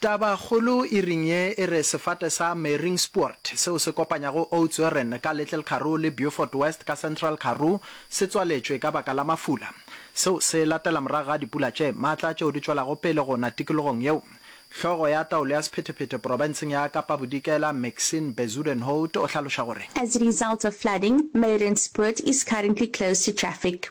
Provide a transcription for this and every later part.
Tabakgolo e ring ye e re sefate sa Meringspoort, seo se kopanyago Oudtshoorn ka Little Karoo le Beaufort West ka Central Karoo, se tswaletšwe ka baka la mafula. Seo se latela morago ga dipula tše matla tšeo di tšwelago pele go na tikologong yeo. Hlogo ya taolo ya sephetephete porofenseng ya Kapa Bodikela, Maxine Bezuidenhout o hlaloša gore. As a result of flooding, Meringspoort is currently closed to traffic.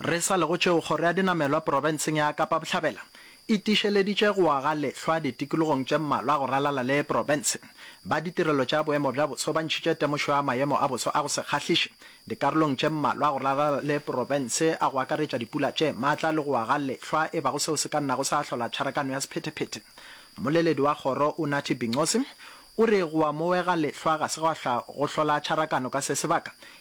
Re sa le go tšeo, Kgoro ya Dinamelwa Profenseng ya Kapa Bohlabela e tiišeleditše go aga lehlwa ditikologong tše mmalwa go ralala le profense. Ba ditirelo tša boemo bja boso ba ntšhitše temošo ya maemo a boso a go se kgahliše dikarolong tše mmalwa go ralala le profense a go akaretša dipula tše matla le go aga lehlwa e bago seo se ka nnago sa hlola tšharakano ya sephetephete. Mmoleledi wa kgoro Unathi Bincosi o re go amoega lehlwa ga se gwa hlwa go hlola tšharakano ka se sebaka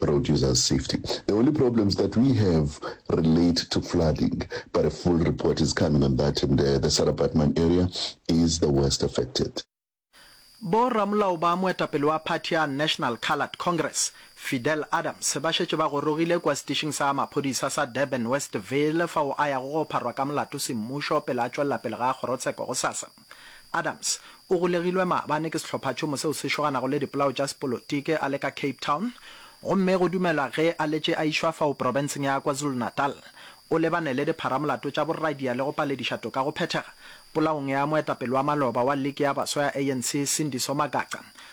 Road users safety, the only problems that we have relate to flooding but a full report is coming on that and uh, the Sarah Baartman area is the worst affected. Bo ramolao ba moetapele wa phathi ya National Coloured Congress, Fidel Adams, ba šetše ba gorogile kua setišing sa maphodisa sa Durban Westville fao a yago go pharwa ka molato semmušo pele a tšwelela pele ga kgorotsheko gosasa. Adams o golegilwe maabane ke sehlophatšhomo seo se šoganago le dipolao tša sepolotiki a le ka Cape Town gomme go dumelwa ge a letše a išwa fao profenseng ya KwaZulu-Natal. O lebane le dipharamolato tša borradia le go palediša toka go phethega polaong ya moetapele wa maloba wa liki ya baswa ya ANC Sindiso Magaqa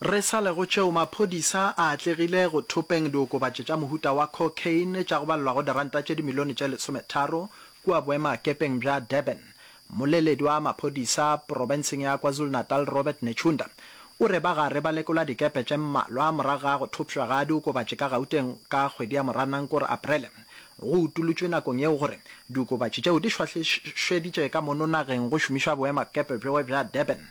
Re sa le go tšeo, maphodisa a atlegile go thopeng diokobatši tša mohuta wa cocaine tša go balelwa go diranta tše dimilione tše lesometharo kua boemakepeng bja Durban. Mmoleledi wa maphodisa profenseng ya KwaZulu-Natal Robert Netshiunda o re ba gare ba lekola dikepe tše mmalwa morago ga go thopšwa ga diokobatši ka Gauteng ka kgwedi ya Moranang kore Aprele. Go utolotšwe nakong yeo gore diokobatši tšeo di šwahlišweditše ka mono nageng go šomišwa boemakepe bjo bja Durban.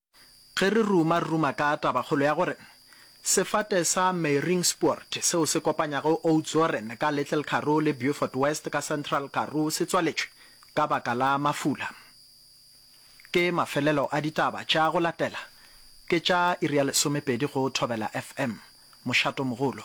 Ge re ruma-ruma ka tabakgolo ya gore sefate sa Meyringspoort seo se kopanyago Oudtshoorn ka Little Karoo le Beaufort West ka Central Karoo se tswaletšwe ka baka la mafula, ke mafelelo a ditaba tša go latela. Ke tša iri ya lesomepedi go Thobela FM. Mošato mogolo.